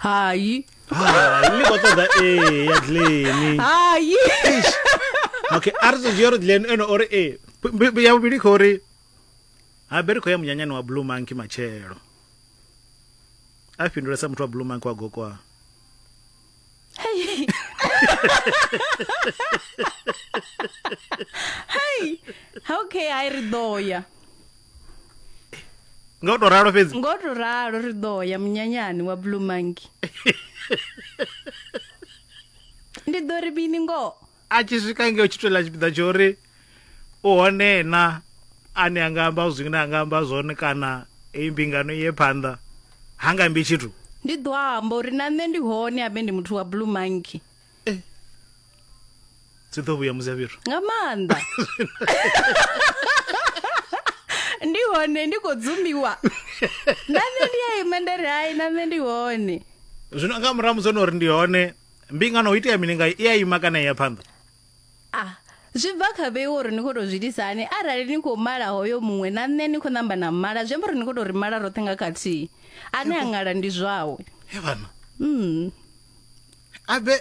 hayi hayi ni khou ṱoḓa ee ya dleni hayi okay a ri ḓo dzhia uri dleni ene ori ee ya vhuvhili khou ri habe ri khou ya munyanyani wa blue monkey matshelo a fhindula sa muthu wa blue monkey wa gokoa Hey. hey. Okay, I ri ḓo ya. Ngo to ralo fhedzi. Ngo to ralo ri ḓo ya munyanyani wa Blue Monkey. Ndi ḓo ri bini ngoho. a tshi swika ngeo tshi tolela tshipiḓa tsho uri u hone na ane a nga amba zwine a nga amba zwone kana eyi mbingano iye phanḓa ha nga mbi tshithu ndi ḓo amba uri na nṋe ndi hone abe ndi muthu wa blue monkey eh. dzi ḓo vhuya musi ya fhethu nga maanḓa ndi hone ndi khou dzumiwa na nṋe ndi ya imendere hai na nṋe ndi hone zwino nga murahu musi ono uri ndi hone mbingano ho itea mini ngayo i a ima kana i ya phanḓa ah zwi bva kha vheiwe uri ni khou tou zwi itisa hani arali ni khou mala hoyo muṅwe na nṋe ni khou namba na mala zwi amba uri ni khou tou ri mala roṱhe nga khathihi ane a ṅala ndi zwawe he vhana mm. abe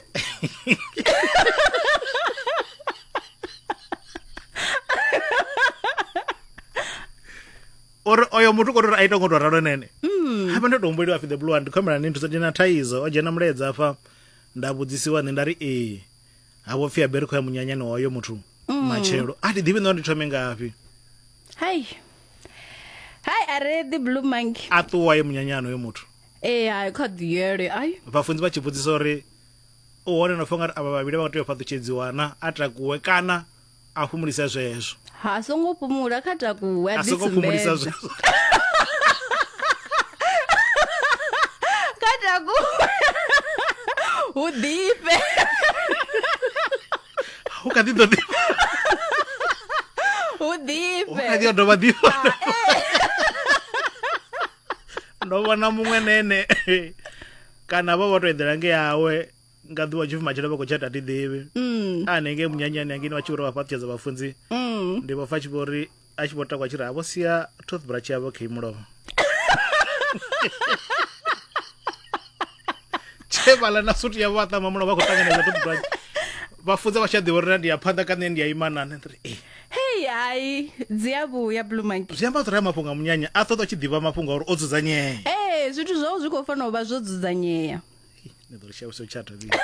uri oyo muthu kho ri a ita ngo to ralo nene mm. hafha ndo to humbeliwa fi the blue and khomela ni nthusa dzina thaidzo o dzhena muledza afha nda vhudzisiwa nṋe nda ri ee ha vho pfi a beri kho ya munyanyani wa oyo muthu mm. matshelo a ndi ḓivhi ndo ndi thome ngafhi hai hai are the blue monkey a ṱuwa ye munyanyani oyo muthu ee hai kha ḓi yele ai vhafunzi vha tshi vhudzisa uri u hone no fanga ri avha vhavhili vha nga tea u fhaṱutshedziwana a takuwe kana a fhumulisa zwezwo ha songo fhumula kha takuwe a songo fhumulisa zwezwo kha takuwe hu ḓifhe hu kha ḓi ḓo ḓi hu ḓifhe hu kha ḓi dovha ḓifha ah, eh. ndo vhona muṅwe nene kana vha vho to eḓela nge yawe nga ḓuvha tshipfi matshelo vha khou tshata ti ḓivhi mm. a nenge munyanyani angini vha tshi vhori vha fhaṱutshedza vhafunzi mm. ndi vho fa tshi vhori a tshi vho takwa tshi ri ha vho sia toothbrush yavho kha imulovha tshevala na sutu yavho vha ṱama mulovha vha khou ṱanganedza toothbrush vhafunza vha tshi a ḓivha uri na ndi ya phanḓa ka nṋe ndi ya imanane ri e eh. hei hai dzi a vhuya blue monkey zwi amba uri a mafhungo a munyanya a ṱoḓa tshi ḓivha mafhungo a uri o dzudzanyea ee eh, zwithu zwao zwi khou fanela u vha zwo dzudzanyea ni ḓo ri shavhisa u tshata vhili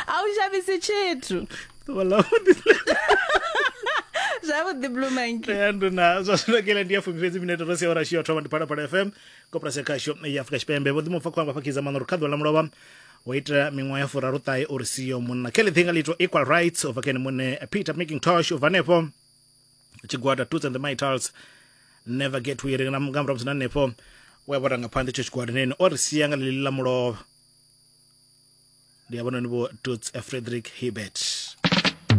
a u shavhisi tshithu ḓuvha ḽavhuḓi zwavhuḓi blue monkey ya nduna zwa zwino kela ndi ya fumi fhedzi minete ro sia ora shiyo thoma ndi phalaphala fm koporasi ya khasho ya afurika tshipembe vho ḓimupfa khou amba fakhiza maṋa uri kha ḓuvha ḽa mulovha wo itela miṅwaha ya furaruṱahe uri siyo munna kelly thinga litwa equal rights ubva kene muṋe peter making tosh ubva hanefho tshigwada toots and the mitals never get weary nga murahu musi na hanefho we a vho ranga phanḓa itsho tshigwada neni o ri sia nga ḽiḽi ḽa mulovha ndi a vhononi vho toots frederick hebert